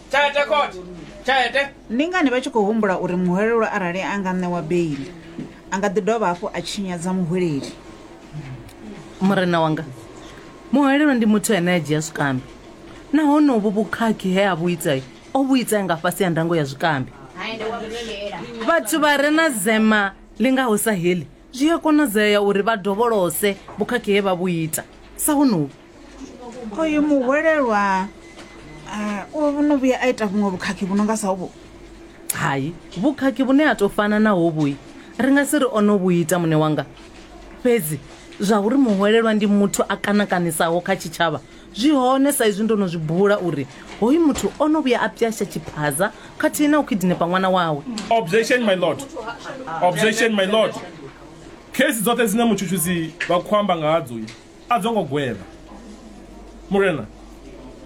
tshelede khothe tshelede ndi ngani vha tshi khou humbula uri muhwelelwa arali a nga ṋewa beili a nga ḓi dovha hafhu a tshinyadza muhweleli murena wanga muhwelelwa ndi muthu ane a dzhia zwikambi nahone uvhu vhukhakhi he a vhu itai o vhu itai nga fhasi ya ndango ya zwikambi vhathu vha re na zema ḽi ngaho sa heḽi zwi a konadzea uri vha dovholose vhukhakhi he vha vhu ita sa honovhu oyu muhwelelwa ah, o no vhuya a ita vhuṅwe vhukhakhi vhu no nga sa uvhu hai vhukhakhi vhune ha tou fana na hovhui ri nga si ri o no vhu ita muṋe wanga fhedzi zwa uri muhwelelwa ndi muthu a kanakanisaho kha tshitshavha zwi hone sa izwi ndo no zwi bula uri hoyu muthu o no vhuya a pyasha tshiphaza khathihi na u khidinepa ṅwana wawe objection my lord objection my lord khesi dzoṱhe dzine mutshutshisi vha khou amba nga hadzo A dzo ngo gwevha, Murena.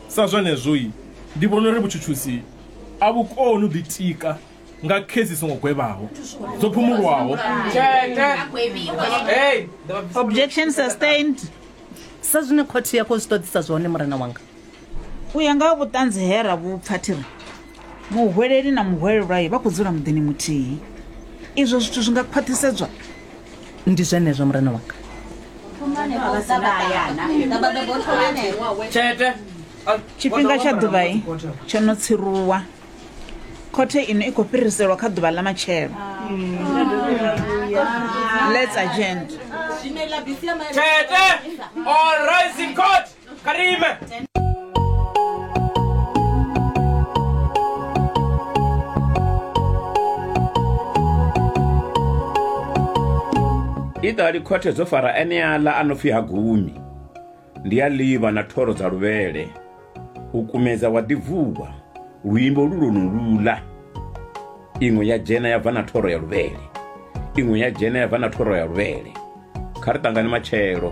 Sa zwenezwo-i, ndi vhona uri vhutshutshisi a vhu koni u ḓitika nga khezi dzi songo gwevhaho, dzo phumulwaho. Objection sustained. Sa zwine khothe ya khou zwi ṱoḓisa zwone, Murena wanga. u ya nga ha vhuṱanzi he ra vhu pfa thi ri muhweleli na muhwelelwayi vha khou dzula muḓini muthihi izwo zwithu zwi nga khwaṱhisedzwa ndi zwenezwo murena wanga tshifhinga tsha ḓuvhai tsho no tsiruwa khothe ino i khou fhiriselwa kha ḓuvha ḽa matshelo let's agenda Tete, all rise in court. Karime. iṱali khothe dzo fara eneaḽa a no pfi ha gumi ndi a ḽivha na thoro dza luvhele u kumedza wa ḓibvuwa luimbo lu lwo no lula iṅwe ya dzhena ya bva na thoro ya luvhele iṅwe ya dzhena ya bva na thoro ya luvhele kha ri ṱangane matshelo